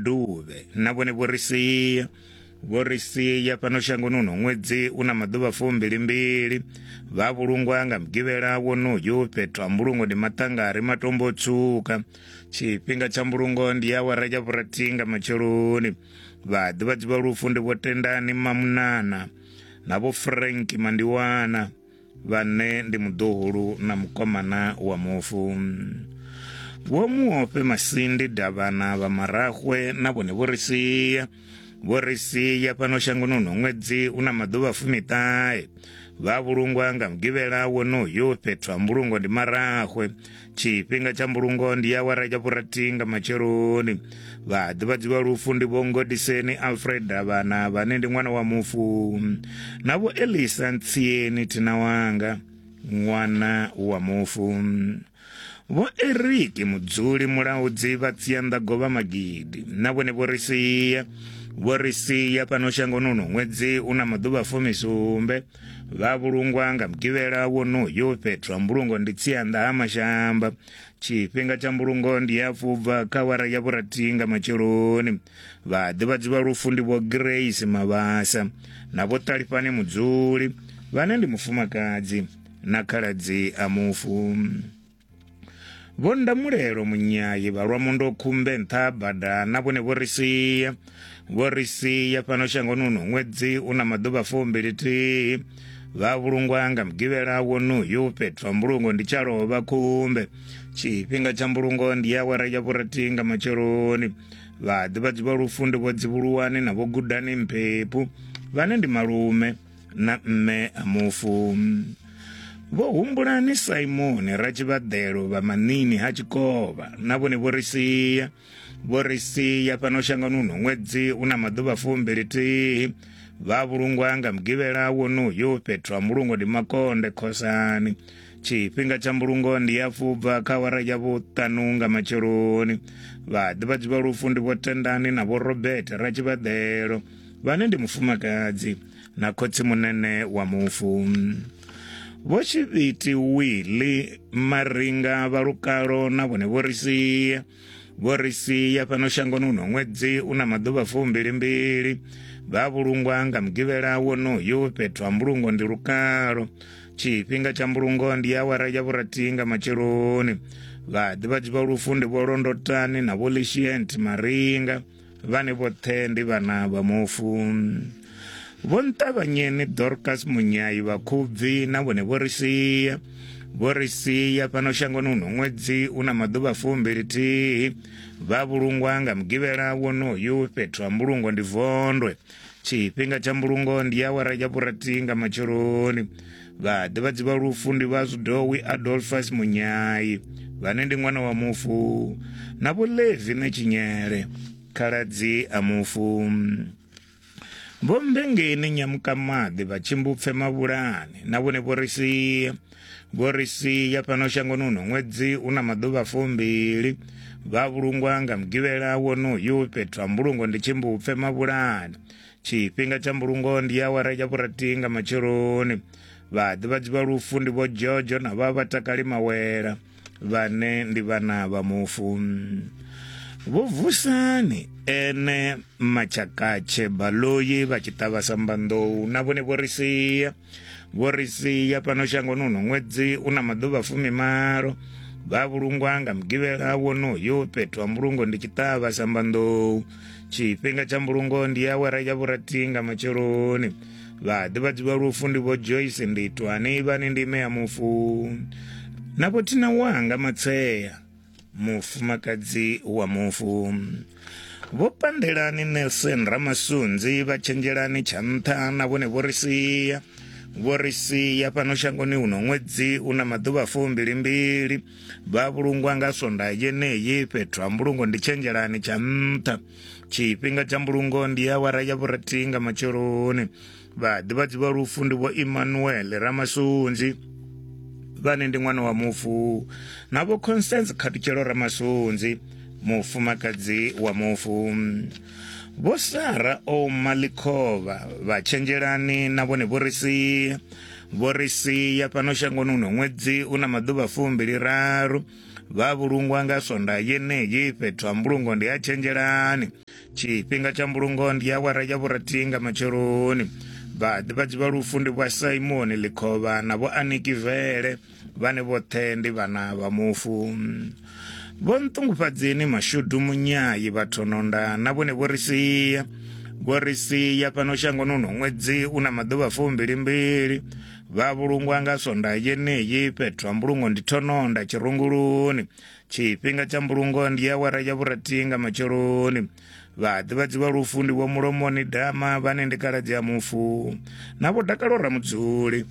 duvhe na vhone vho ri sia vho ri sia fhano shangoni uno ṅwedzi u na maḓuvha fumbilimbili vha vhulungwa nga mugivhela wonoyu fhethu ha mbulungo ndi maṱangari matombo tswuka tshifhinga tsha mbulungo ndi awara ya vhurathi nga matsheloni vhaḓivhadzi vha lufu ndi vho tendani mamunana na vho frank mandiwana Vhane ndi muḓuhulu na mukomana wa mufu. Vho Muofhe Masindi Davhana vha Marahwe na vhone vho ri sia. Vho ri sia fhano shangoni uno ṅwedzi una maḓuvha fumiṱahe. Vha vhulungwa nga mugivhela wonoyu fhethu ha mbulungo ndi Marahwe. tshifhinga tsha mbulungo ndi awara ya vhurathi nga matsheloni vhaḓivhadzi vha lufu ndi vho ngodiseni alfred davhana vhane ndi ṅwana wa mufu na vho elisa ntsieni thina wanga ṅwana wa mufu vho eriki mudzuli mulaudzi vha tsianḓa govha magidi na vhone vho ri sia vho ri sia fhano shangoni uno ṅwedzi u na maḓuvha fumisumbe vha vhulungwa nga mugivhela wonoyo fhethu ha mbulungo ndi tsianda ha mashamba tshifhinga tsha mbulungo ndi ya fubva kha wara ya vhurathi nga matsheloni vhaḓivhadzi vha lufu ndi vho grace mavhasa na vho ṱalifhane mudzuli vhane ndi mufumakadzi na khaladzi a mufu vho ndamulelo munyayi vha lwa mundo khumbe nṱha bada na vhone vho ri sia vho ri sia fhano shangoni uno ṅwedzi u na maḓuvha fumbilithihi vha vhulungwa nga mugivhela wonoyu fhethu ha mbulungo ndi tsha lovha khumbe tshifhinga tsha mbulungo ndi awara ya vhurathi nga matsheloni vhaḓivhadzi vha lufu ndi vho dzivhuluwani na vho gudani mphephu vhane ndi malume na mme a mufu vho humbulani simoni ratshivhaḓelo vha manini ha tshikovha na vhone vho ri sia vho ri sia fhano shangoni uno ṅwedzi u na maḓuvha fumbili thihi vha vhulungwa nga mugivhela wonoyo fhethu ha mbulungo ndi makonde khosani tshifhinga tsha mbulungo ndi ya fubva kha wara ya vhuṱanu nga matsheloni vhaḓivhadzi vha lufu ndi vho tendani na vho robert ratshivhaḓelo vhane ndi mufumakadzi na khotsi munene wa mufu vho tshivhiti wili maringa vha lukalo na vhone vho ri sia vho ri sia fhano shangoni uno ṅwedzi u na maḓuvha fumbilimbili vha vhulungwa nga mugivhela wonoyu fhethu ha mbulungo ndi lukalo tshifhinga tsha mbulungo ndi awara ya vhurathi nga matsheloni vhaḓivhadzi vha lufu ndi vho londotani na vho lishient maringa vhane vhoṱhe ndi vhana vha mufu vho nṱavhanyeni dorcas munyayi vhakhubvi na vhone vho ri sia vho ri sia fhano shangoni uno ṅwedzi u na maḓuvha fumbilithihi vha vhulungwa nga mugivhela wonoyu fhethu ha mbulungo ndi vondwe tshifhinga tsha mbulungo ndi awara ya vhurathi nga matsheloni vhaḓivhadzi vha lufu ndi vha zwidowi adolfas munyai vhane ndi ṅwana wa mufu na vhulevi na tshinyele khaladzi a mufu vho mbengeni nyamukamaḓi vha tshimbupfe mavhulani na vhone vho ri sia vho ri sia fhano shangoni uno ṅwedzi u na maḓuvha fumbili vha vhulungwa nga mugivhela wonoyu fhethu ha mbulungo ndi tshimbupfe mavhulani tshifhinga tsha mbulungo ndi awara ya vhurathi nga matsheloni vhaḓivhadzi vha lufu ndi vho jojo na vha vhatakali mawela vhane ndi vhana vha mufu vho vusani ene machakatshe baloyi vha tshi ṱavha sambanḓou na vhone vho ri sia vho ri sia fhano shangoni uno ṅwedzi u na maḓuvha fumimalo vha vhulungwa nga mugivhela wonoyo fhethu ha mbulungo ndi tshiṱavha sambanḓou tshifhinga tsha mbulungo ndi awara ya vhurathi nga matsheloni vha ḓivhadziwa lufu ndi vho joyce nditwani vhane ndi ime ya mufu na vho thina wanga matsea mufumakadzi wa mufu vho pandelani nelson ramasunzi vha tshenzhelani tsha nṱha na vhone vho ri sia vho ri sia fhano shangoni uno ṅwedzi u na maḓuvha fumbilimbili vha vhulungwa nga sonda yeneyi fhethu ha mbulungo ndi tshenzhelani tsha nṱha tshifhinga tsha mbulungo ndi awara ya vhurathi nga matsheloni vhaḓivhadzi vha lufu ndi vho Emmanuel Ramasunzi vhane ndi ṅwana wa mufu na vho Constance Khatutshelo Ramasunzi mufumakadzi wa mufu vho Sara Omalikova vha Tshenzhelani na vhone vho ri sia vho ri sia fhano shangoni uno ṅwedzi u na maḓuvha fumbili raru vha vhulungwa nga swonda yeneyi fhethu ha mbulungo ndi ha Tshenzhelani tshifhinga tsha mbulungo ndi awara ya vhurathi nga matsheloni vhaḓivhadzi vha lufu ndi vha simoni ḽikhovha na vho aniki vele vhane vhoṱhe ndi vhana vha mufu vho nṱungufhadzeni mashudu munyayi vhathononda na vhone vho ri sia vho ri sia fhano shangoni uno ṅwedzi u na maḓuvha fumbilimbili vha vhulungwa nga sonda yeneyi fhethu ha mbulungo ndi thononda tshirunguluni tshifhinga tsha mbulungo ndi awara ya vhurathi nga matsheloni vhaḓivhadzi vha lufu ndi vho mulomoni dama vhane ndi kaladzi ya mufu na vho dakalo ramudzuli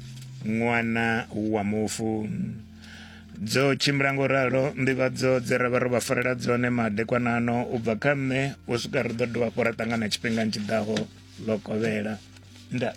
ṅwana wa mufu dzo tshimbila ngo ralo nḓivhadzo dze ra vha ro vha farela dzone madekwanano u bva kha nṋe u swika ri ḓo dovha fho ra ṱangana tshifhingani tshi ḓaho ḽo kovhela nda